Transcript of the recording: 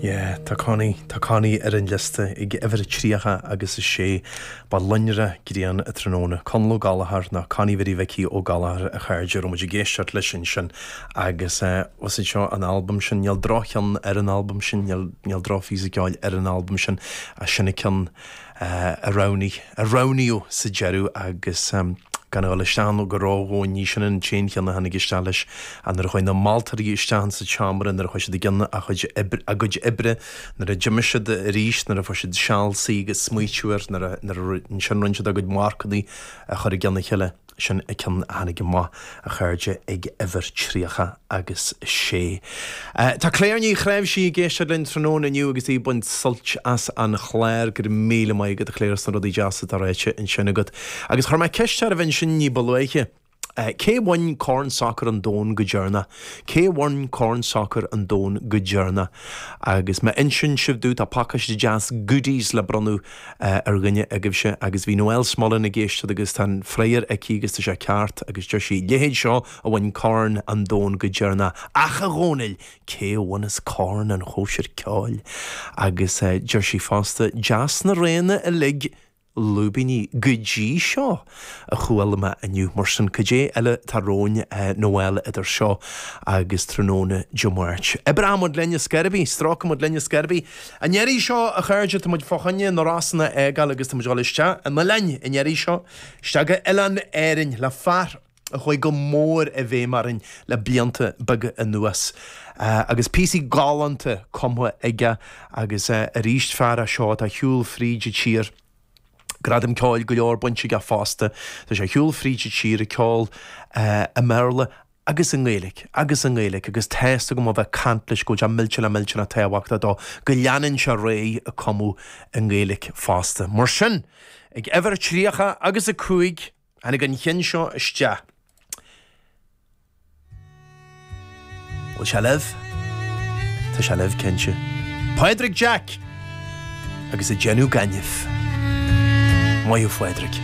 Yeah, tá Connie, tá Connie ar an liosta ag uimhir a 30 agus a 6. Ba lonrach grian an tráthnóna. Conall Ó Gallchóir, nó Connie Mhary Mhicí Ó Gallchóir a chairde, a raibh muid ag éisteacht leis ansin agus eh, was it seo an album sin, níl droch-cheann ar an album sin, níl, níl droch-phíosa ceoil ar an album sin, ach sin an cionn. a roghnaíodh sa deireadh agus gan a dhul isteach ann go ródhomhain, ní sin an t-aon cheann a tháinig isteach leis, ach nuair a chuaigh na moltóirí isteach insa tseomra, nuair a chuaigh siad i gcionn a chuid, a gcuid oibre, nuair a d'imigh siad aríst, nuair a fuair siad seal suí agus smaoitiú air, nuair a, ansin rinne siad a gcuid marcannaí a chur i gcionn a chéile. Sin an ceann a tháinig amach, a chairde, ag uimhir tríocha agus a sé. Tá Clare Ní Chnáimhsí ag éisteacht linn tráthnóna inniu agus í ag baint suilt as an chlár. Go raibh míle maith agat, a Clare, as na rudaí deasa atá ráite ansin agat. Agus chuir mé ceist oraibh ansin ní ba luaithe, Cé a bhain Corn Sacair an Domhain go deireanach? Cé a bhain Corn Sacair an Domhain go deireanach? Agus má insíonn sibh domh, tá pacáiste deas goodies le bronnadh ar dhuine agaibhse agus bhí Noelle Smullen ag éisteacht agus tá an freagra aici agus tá sé ceart agus deir sí, leithéid seo a bhain corn an domhain go deireanach, ach a Dhónaill, cé a bhaineas corn an chóisir ceoil? Agus deir sí fosta, deas na roghanna uilig, lúibíní, go dtí seo! a chuala mé inniu. Mar sin, cad é eile atá romhainn? Noelle, idir seo agus tráthnóna Dé Máirt, oibreoimid linn ar scor ar bith, stróicfimid linn ar scor ar bith. An iarraidh seo, a chairde, táimid fá choinne na Rosann a fhágáil agus táimid a dhul isteach in oileáin an iarraidh seo, isteach go Oileán Árann, le fear a chuaigh go mór i bhfeidhm orainn le blianta beaga anuas agus píosaí galánta cumtha aige agus arís fear é seo atá ag siúl fríd an tír, Gradaim ceoil go leor bainte aige fosta. Tá sé ag siúl fríd an tír ag ceol i mBéarla agus i nGaeilge agus i nGaeilge agus tá's agam ó bheith ag caint leis go bhfuil sé millteanach millteanach tábhachtach dó go leanann sé ar aghaidh ag cumadh i nGaeilge fosta. Mar sin, ag uimhir a tríocha agus a cúig, Tháinig an ceann seo isteach Bhfuil sé libh? Tá sé libh cinnte. Pádraig Jack! Agus ag déanamh gainimh. Maith thú Phádraig.